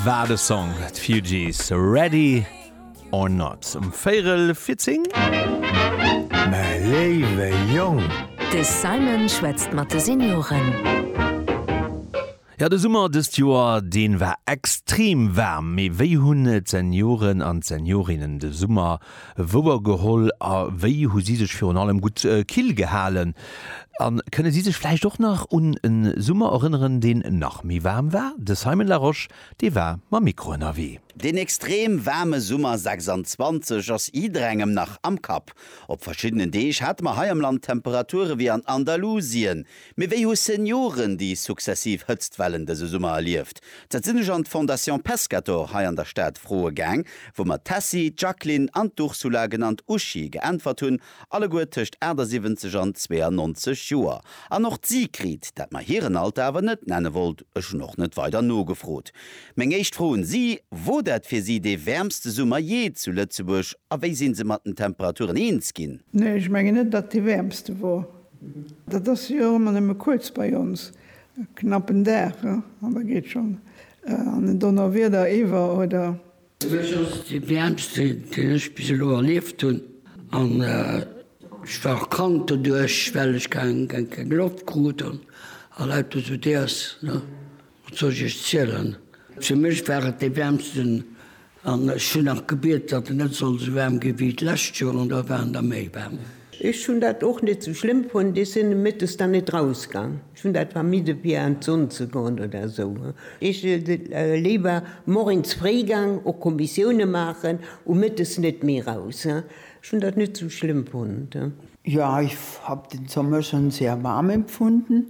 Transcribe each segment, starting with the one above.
War de Song d'Fugees Ready or not um Véirel fir 10? Mäi léiwe Jong! De Simon schwätzt mat de Senioren. Jo, de Summer dëst Joer, deen war extrem waarm. Mee wéi hunn d'Senioren an d'Seniorinnen de Summer wouer geholl a wéi hu si sech virun allem gutt kill gehalen a kënne si sech vläicht och nach un e Summer erënneren, deen nach méi waarm war? De Simon Larosche, dee war mam Mikro ënnerwee. Deen extrem waarme Summer 26 ass jidderengem nach am Kapp. Op verschiddenen Deeg hate mer hei am Land Temperature wéi an Andalusien, Mee wéi hu Senioren déi successiv Hëtztwellen dëse Summer erlieft? Dat sinn ech an d'Fondation Pescator hei an der Stad froe gaang, wou mer d'Tessy, d'Jacqueline an d'Ursula, genannt Uschi, geäntwert hunn, alleguer tëscht 78 an 92 Joer. An och d'Sigrid, dat mer hiren Alter awer net nenne wollt, ech hunn och net weider nogefrot. Meng éischt Fro un si, Wor dat fir si dee wäermste Summer jee zu Lëtzebuerg a wéi sinn se mat den Temperaturen eens ginn? Nee, ech mengen net, datt dee wäermste wor. Dat ass jo och ëmmer nëmme kuerz bei ons, e knappen Dag, an da geet schonn an en Donnerwieder iwwer, oder? Mech ass dee wäermste, deen ech bis elo erlieft hunn, an ech war och krank doduerch, well ech keng Loft krut an lauter esou Déers, Wat soll ech iech zielen? Fir mech war et dee wäermsten an ech hunn nach gebiet, datt en net soll esou waarm gi wéi d'lescht Joer an da war en da méi waarm. Ech hunn dat och net esou schlëmm fonnt. Ech sinn Mëttes dann net rausgang. Ech hunn dat vermidde fir an d'Sonn ze goen oder esou. Ech si léiwer moiens fréi gang och Kommissioune maachen u Mëttes net méi raus. Ech hunn dat net esou schlëmm fonnt. Jo, ech hab den Sommer schonn sehr warm empfunden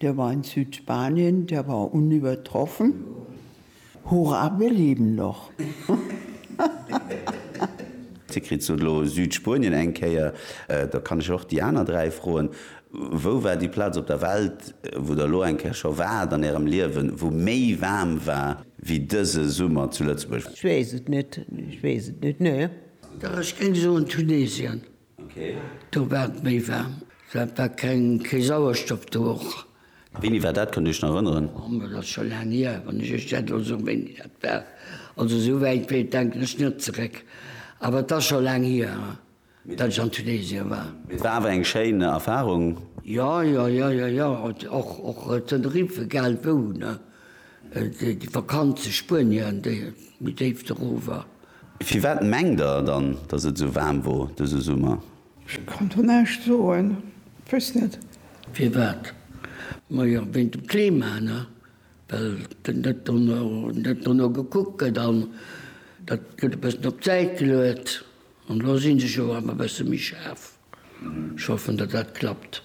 Der war in Südspanien, der war unübertroffen. Hurra, wir leben noch! Dir kritt se elo, Südspuenien eng Kéier. Da kann ech och déi aner dräi froen, Wou war déi Plaz op der Welt, wou Der elo eng Kéier scho waart an Ärem Liewen, wou méi waarm war wéi dëse Summer zu Lëtzebuerg? Ech weess et net, ech weess et net, ne. Dach, ech géing soen Tunesien. Do war et méi waarm. Dat war keng, kee Sauerstoff do och. A wéini war dat? Kënnt Dir Iech nach erënneren? Oh, mä dat ass scho laang hier, wann ech Iech dat elo soen, wéini dat war. Also esou wäit wéi et denken ech net zeréck. Awer et ass scho laang hier, datt ech an Tunesien war. Mee et war awer eng schéin Erfarung? Jo, jo, jo, jo, jo. Och, och Tenerife, egal wou, ne? Déi Vakanz zu Spuenien, déi méi déift erower. Firwat mengt der dann, dass et esou waarm wor dëse Summer? Ech kann do näischt soen, ech wéss net. Firwat? Majo, wéint dem Klima, ne? Well net dono, net dono gekuckt gëtt an dat gëtt e bëssen op d'Säit geluet. An elo si se jo awer e bësse méi schaarf. Ech hoffen, datt dat klappt.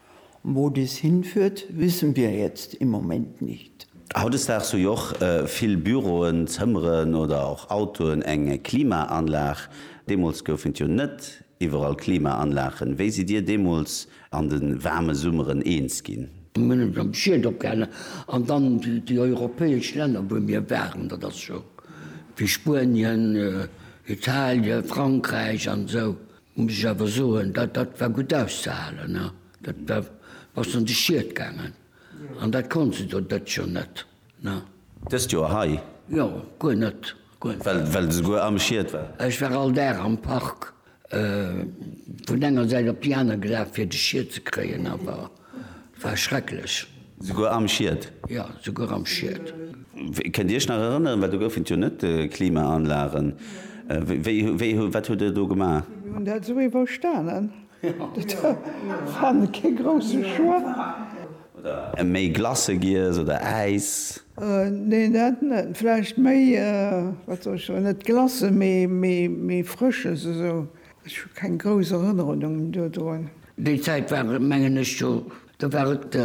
Wo dies hinführt, wissen wir jetzt im Moment nicht. Hautdesdaags hu jo och vill Büroen, Zëmmeren oder och Autoen eng Klimaanlag. Deemools goufen et jo net iwwerall Klimaanlagen. Wéi sidd Dir deemools an de waarme Summeren eens ginn? Mir hunn eis am Schiet opgehalen an dann déi europäesch Länner, wou mir waren, dat ass scho wéi Spuenien, Italien, Frankräich an esou. Muss ech awer soen, dat dat war gutt auszehalen. Da bass de an de Schiet gaangen. An dat konnt se do dëtt Joer net. Dëst Joer hei? Jo, guer net. Well de souguer am Schiet war? Ech war all Dag am Park vun enger Säit op déi aner gelaf, fir de Schiet ze kréien. Awer War schrecklech. Souguer am Schiet? Jo, souguer am Schiet. Kënnt Dir Iech nach erënneren, well do goufen et jo net Klimaanlagen, wéi, wéi, wat hutt Der do gemaach? Mir hunn dat esou iwwerstanen. Dat war kee grousse Choix. Oder méi Glace giess oder Äis? Nee, dat net. Vläicht méi, wat soll ech soen, net Glace, mee, mee, mee Frësches esou. Ech hu keng grouss Erënnerungen dodroen. Déi Zäit war et, mengen ech, jo, da war et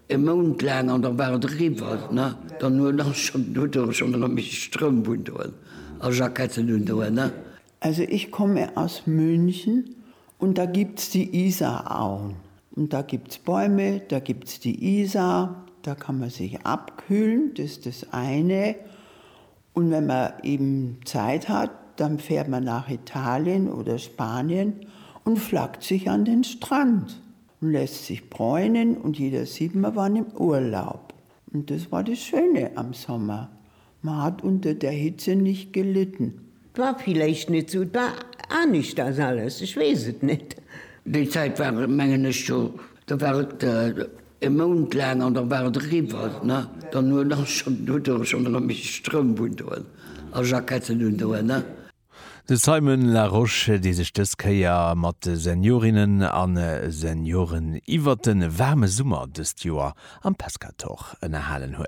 e Mount laang an da war et eriwwer. Ne? Dann huet ass schonn, huet e schonn erëm e bessche Stroum hunn doen a Jacketten hunn doen. Ne? Also ich komme aus München und da gibt's die Isarauen und da gibt's Bäume, da gibt's die Isar, da kann man sich abkühlen, das ist das eine. Un wenn mer eben Zeit hat dann fährt mer nach Italien oder Spanien und flackt sich an den Strand und lässt sich bräunen und jeder sieht mer waren im Urlaub und das war das Schöne am Sommer, mer hat unter der Hitze nicht gelitten. War villeicht net sou, war aneschters alles, ech wees et net. Déi Zeit war mengen ech scho Da war et e Mount laang an da war et eriwwer. Ne? Dann huet ass schonn do do schonn erëm méi Stroum vun doen a Jacketten un doen. Ne? De Simon Larosche, dee sech dës Kéier mat de Seniorinnen a Senioren iwwert de waarme Summer dëst Joer am Pescator ënnerhalen huet.